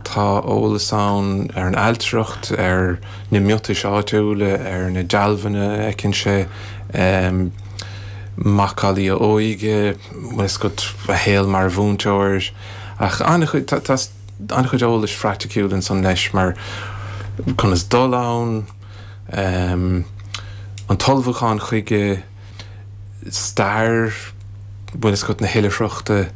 Tá eolas ann ar an ailtireacht, ar na miotais áitiúla, ar na dealbhanna a fheiceann sé, macallaí a óige, bhuel, is dócha, a shaol mar mhúinteoir, ach an-chuid, tá an-chuid eolais phraiticiúil ansan leis mar conas dul ann, an t-ullmhúchán chuige, stair bhailte is chathracha na hoilithreachta.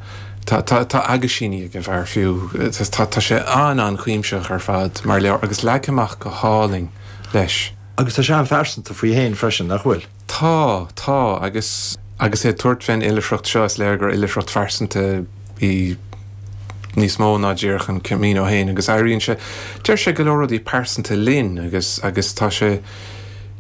Tá aguisíní ag an bhfear, fiú. Tá sé an-an-chuimsitheach ar fad mar leabhar agus leagtha amach go hálainn leis. Agus tá sé an-phearsanta faoi fhéin freisin, nach bhfuil? Tá, tá. Agus agus é ag tabhairt fén oilithreacht seo, is léir gur oilithreacht phearsanta í níos mó ná díreach an Camino fhéin agus éiríonn sé, deir sé go leor rudaí pearsanta linn agus agus tá sé.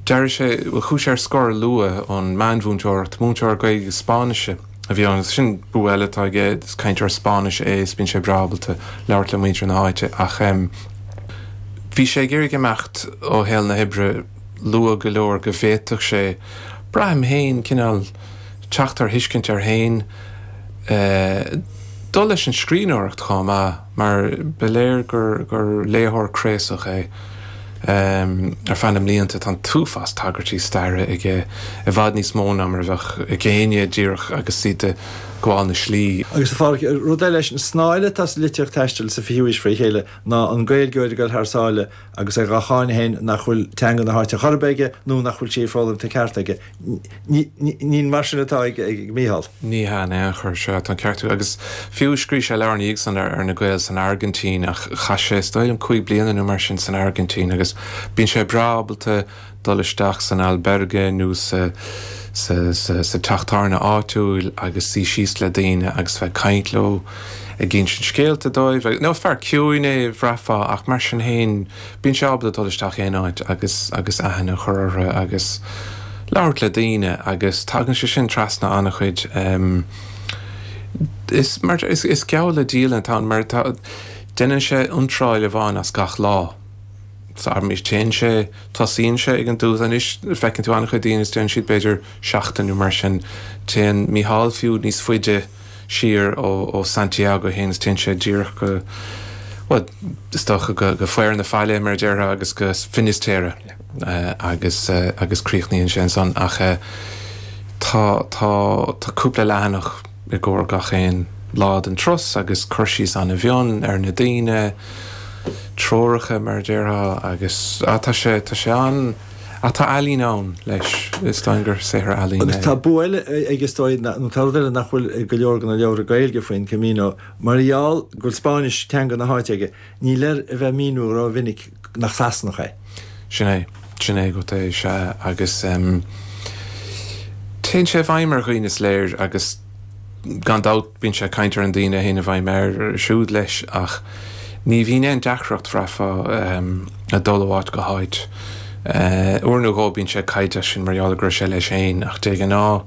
D'éirigh sé, chuaigh sé ar scor luath ón meánmhúinteoireacht, múinteoir Gaeilge agus Spáinnise a bhí ann agus sin bua eile atá aige, is cainteoir Spáinnise é is bíonn sé breá ábalta labhairt le muintir na háite ach em bhí sé ag iarraidh imeacht ó shaol na hoibre luath go leor go bhféadfadh sé, braithim fhéin, cineál teacht ar thuiscint air fhéin eh dul leis an scríbhneoireacht chomh maith. mar ba léir gur léitheoir craosach é. Ar feadh na mblianta, tá an t-uafás tagairtí staire aige, i bhfad níos mó ná mar a bheadh ag éinne díreach agus iad ag gabháil na slí. Agus rud eile leis an snáith atá sa litríocht taistil sa 20ú haois fré chéile ná an Gaeilgeoir ag gabháil thar sáile agus é dhá cháineadh fhéin nach bhfuil teanga na háite chor ar bith aige nó nach bhfuil sí foghlamtha ceart aige. Ní mar sin atá ag Mícheál. Ní hea in aon chor, sea, tá an ceart agat. Agus fiú, scríobh sé leabhar i ndiaidh san ar na Gaeil san Airgintín, ach chaith sé, is dóigh liom, cúig bliana nó mar sin san Airgintín, agus bíonn sé breá ábalta, dul isteach san albergue nó sa teach tábhairne áitiúil agus suí síos le daoine agus a bheith ag caint leo, ag insint scéalta dóibh. Now, fear ciúin é, bhraithfeá, ach mar sin fhéin, bíonn sé ábalta dul isteach aon áit agus aithne a chur orthu agus labhairt le daoine agus tagann sé sin trasna an-chuid. Is geall le dialann atá ann mar déanann sé iontráil amháin as gach lá. Agus téann sé, tosaíonn sé ag an dtús, anois feiceann tú an-chuid daoine agus déanann siad b'fhéidir seachtain nó mar sin. Téann Mícheál fiú níos faide siar ó Santiago fhéin agus téann sé díreach go, bhuel, is dócha go faobhar na faille mar a déarfá agus go Finisterre agus, agus críochnaíonn sé ansan ach tá, tá, tá cúpla leathanach. i gcomhair gach aon lá den turas, agus cur síos an-mhion ar na daoine, treoracha mar a déarfá, agus á, tá sé, tá sé an, á, tá ealaín ann, leis, is dóigh gur saothar ealaíne é. Agus tá bua eile aige is dóigh, nó tá rud eile nach bhfuil i go leor de na leabhra Gaeilge faoin Camino, mar gheall go bhfuil Spáinnis, teanga na háite, aige, níl air a bheith ag míniú rómhinic nach Sasanach é. Sin é. Sin é agat é. Sea, agus téann sé i bhfeidhm ar dhaoine, is léir, agus gan dabht bíonn sé ag caint ar na daoine a théann i bhfeidhm air siúd leis, ach ní bhíonn aon deacracht, bhraithfeá, le dul ó áit go háit. Uair nó dhó bíonn sé ag caint air sin mar gheall go raibh sé leis féin, ach de ghnáth,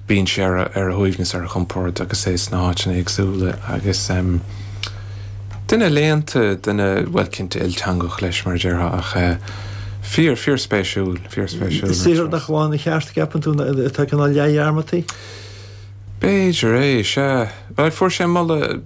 Bíonn sé ar a shuaimhneas, ar a chompord agus é sna háiteanna éagsúla agus duine léannta, duine, bhuel, cinnte, ilteangach leis, mar a déarfá, ach fíor, fíorspéisiúil, fíorspéisiúil. Is saothar nach bhfaigheann a cheart, an gceapann tú, atá cineál leathdhearmadta? B'fhéidir é, sea. Bhuel, fuair sé moladh.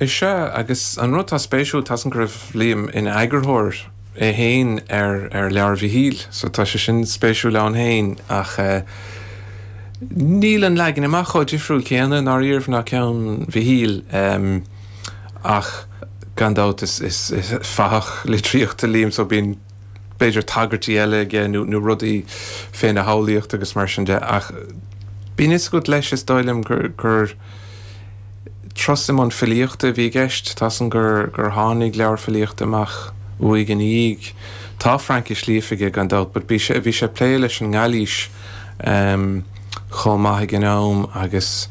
Is ea, agus an rud atá spéisiúil, tá fhios againn go raibh Liam ina eagarthóir é féin ar leabhar Mhichíl, so tá sé sin spéisiúil ann féin, ach níl an leagan amach chomh difriúil céanna i ndáiríribh ná ceann Mhichíl, ach gan dabht is fathach litríochta Liam, so bíonn. b'fhéidir tagairtí eile aige nó rudaí féna shamhlaíocht agus mar sin de, ach bíonn fhios agat leis, is dóigh liom, gur turas i mbun filíochta a bhí i gceist. Tá fhios againn gur tháinig leabhair filíochta amach uaidh ina dhiaidh. Tá Fraincis líofa aige gan dabht but bhí sé, bhí sé ag plé leis an nGailís chomh maith ag an am agus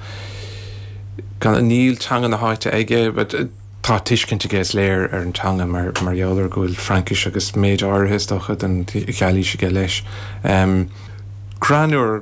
gan, níl teanga na háite aige but, Tá tuiscint aige, is léir, ar an teanga mar gheall ar go bhfuil Fraincis agus méid áirithe, is dócha, den Ghailís aige, leis. Crann úr.